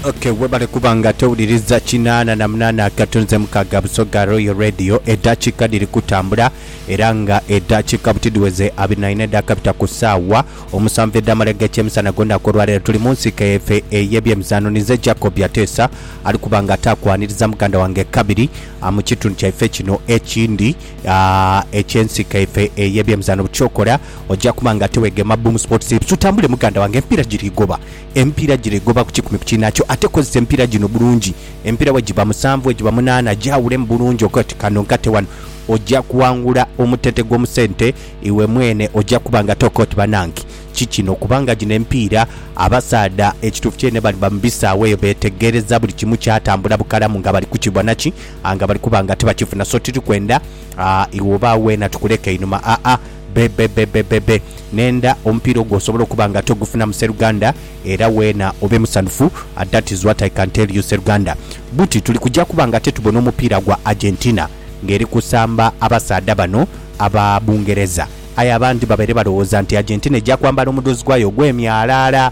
Ok webale kuba nga towuliriza kinaana na munaana akatunzi mukaaga Busoga Royal Radio edhakiika dhiri kutambula era nga edhakiika buti dhiweze abiri na ina edhakabita ku saawa omusanvu edhamala eg'ekyemisana gonaku olwaleero tuli mu nsiike yaife ey'ebyemizaano ninze Jacob Byateesa ali kuba nga ate akwaniriza muganda wange Kabiri mu kitundu kyaife kino ekindi Ekyensi kaife eye byemizano bukyokora ojja kuba nga tewegema Boom Sports TV. Tutambule muganda wange empiira giri goba. Empiira giri goba ku kikumi ku kinakyo ate kozesa empiira gino bulungi. Empiira bwe giba musanvu bwe giba munaana gyawulemu bulungi oge oti kano nkate wano ojja kuwangula omutete gw'omu sente iwe mwene ojja kuba nga toka oti banange ki kino kubanga gino empiira abasaadha ekituufu kyene bali ba mu bisaawe eyo betegereza buli kimu kyatambula bukalamu nga bali kukibona ki a nga bali kuba nga tibakifuna so tiri kwenda a iwe oba weena tukuleke einhuma a a bebebebebebe nenda omupiira ogwo osobole okuba nga togufunamu seruganda era weena obe musanhufu a that is what i can tell you seruganda buti tuli kuja kuba nga tetubona omupiira gwa argentina nga eri kusamba abasaadha bano aba bungereza aye abandi babaire balowooza nti argentina eja kwambala omudhozi gwayo ogwemyalaala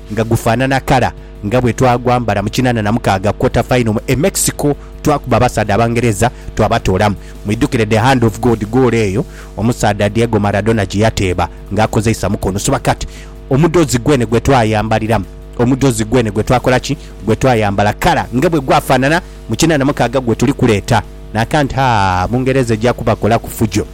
nga gufanana kala nga bwe twagwambala mu kinana na mukaaga quarter final mu e Mexico twakuba abasaadha abangereza twabatoolamu. Mwidhukire the hand of God goolo eyo omusaadha Diego Maradona gye yateeba nga akozeisa mukono so kati omudhozi gwene gwe twayambaliramu omudhozi gwene gwe twakola ki gwe twayambala kala nga bwe gwafanana mu kinana mukaaga gwe tuli kuleeta na can't haa Bungereza eja kubakolaku fujo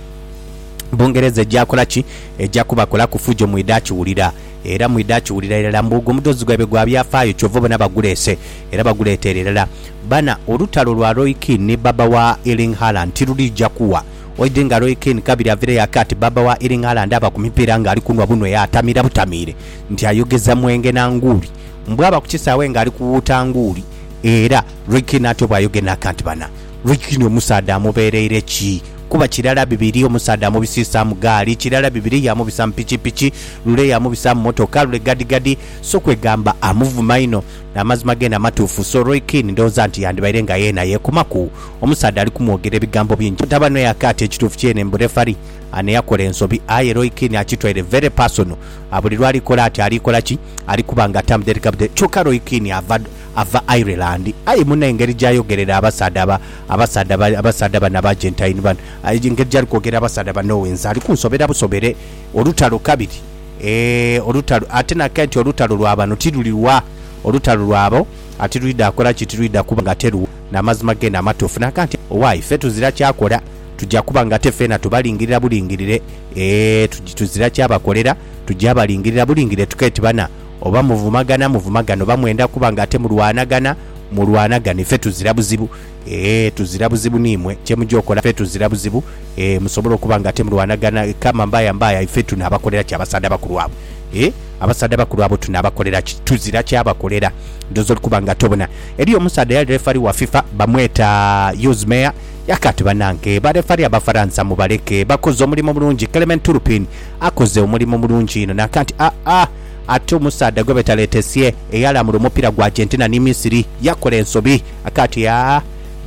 Bungereza eja kola ki eja kubakolaku fujo mwidha kiwulira. Era mwidha akiwulira irala mbu ogwo mudhozi gwaibwe gwa byafaayo kyova obona baguleese era baguleeteere irala. Bana, olutalo lwa Roy Keane ni baba wa Erling Haaland tirulija kuwa. Oidhi nga Roy Keane kabiri avireyo ake ati baba wa Erling Haaland aba ku mipiira nga ali kunwa bunwe yaatamira butamiire nti ayogeza mwenge na nguuli. Bwaba ku kisaawe nga ali kuwuuta nguuli era Roy Keane atyo bwayoge n'akanti bana. Lukyni omusaadha amubeereire ki? Kuba kirala bibiri omusaadha amubisiisaamu gaali, kirala bibiri yaamubisa mu pikipiki, lule yaamubisa mu motoka, lule gadigadi. So kwegamba amuvuma inho. N'amazima geene amatuufu. So Lukyni ndowooza nti yandibaire nga yeena yeekomaku omusaadha ali kumwogera ebigambo bingi. Butaba n'oyo akaata ekituufu kyeene mbu refari ano yakola ensobi. Aye Lukyni akitwaire very personal. Buli lw'ali kola ati ali kola ki? Ali kuba nga atamudhereka budhereka. Kyokka Lukyni ava. Ava Ireland, aye muna engeri jayogerera abasaadha aba, abasaadha aba, abasaadha bano aba Argentine bano, engeri jali kwogera abasaadha ba Norway nze ali kunsobera busobere. Olutalo kabiri, eeh, olutalo, ate nakaire nti olutalo lwa bano tiluli lwa, olutalo lwabo a tilwidha kola ki? Tilwidha kuba nga teruwa na mazima gene amatuufu. Nagamba nti, Owaye, ffe tuzira kya kola, tuja kuba nga ate feena tubalingirira bulingirire, eeh, tuj, tuzira kya bakolera, tuja balingirira bulingirire, tukaire ti bana, Oba muvumagana muvumagane oba mwenda kuba nga ate mulwanagana mulwanagane fe tuzira buzibu eeh tuzira buzibu nimwe kyemuja okola fe tuzira buzibu eeh musobole okuba nga ate mulwanagana kama mbaya mbaya ife tunabakolera ki abasadha bakulu abo eeh abasadha bakulu abo tunabakolera ki tuzira kyabakolera ndoza oli kuba nga ate obona eriyo omusadha eyali refari wa fifa bamweta Yuz Meyer yaka ati banange ba refari abafaransa mubaleke bakoze omulimo mulungi Clement Turpin akoze omulimo mulungi inho naka nti aah Ate omusaadha gwe beta Letessie eyalamula omupira gwa Argentina ni Misiri yakola ensobi akati haa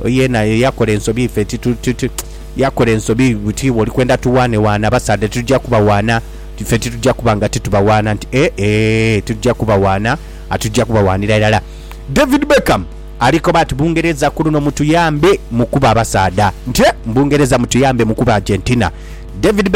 yena yakola ensobi ife titutiti yakola ensobi buti wolikwenda tuwaane waana abasaadha titujja kubawaana ife titujja kuba nga titubawaana nti e e titujja kubawaana atujja kubawaanira irala David Beckham alikoba ati Bungereza kuluno mutuyambe mukube abasaadha nti e Bungereza mutuyambe mukube Argentina David Beckham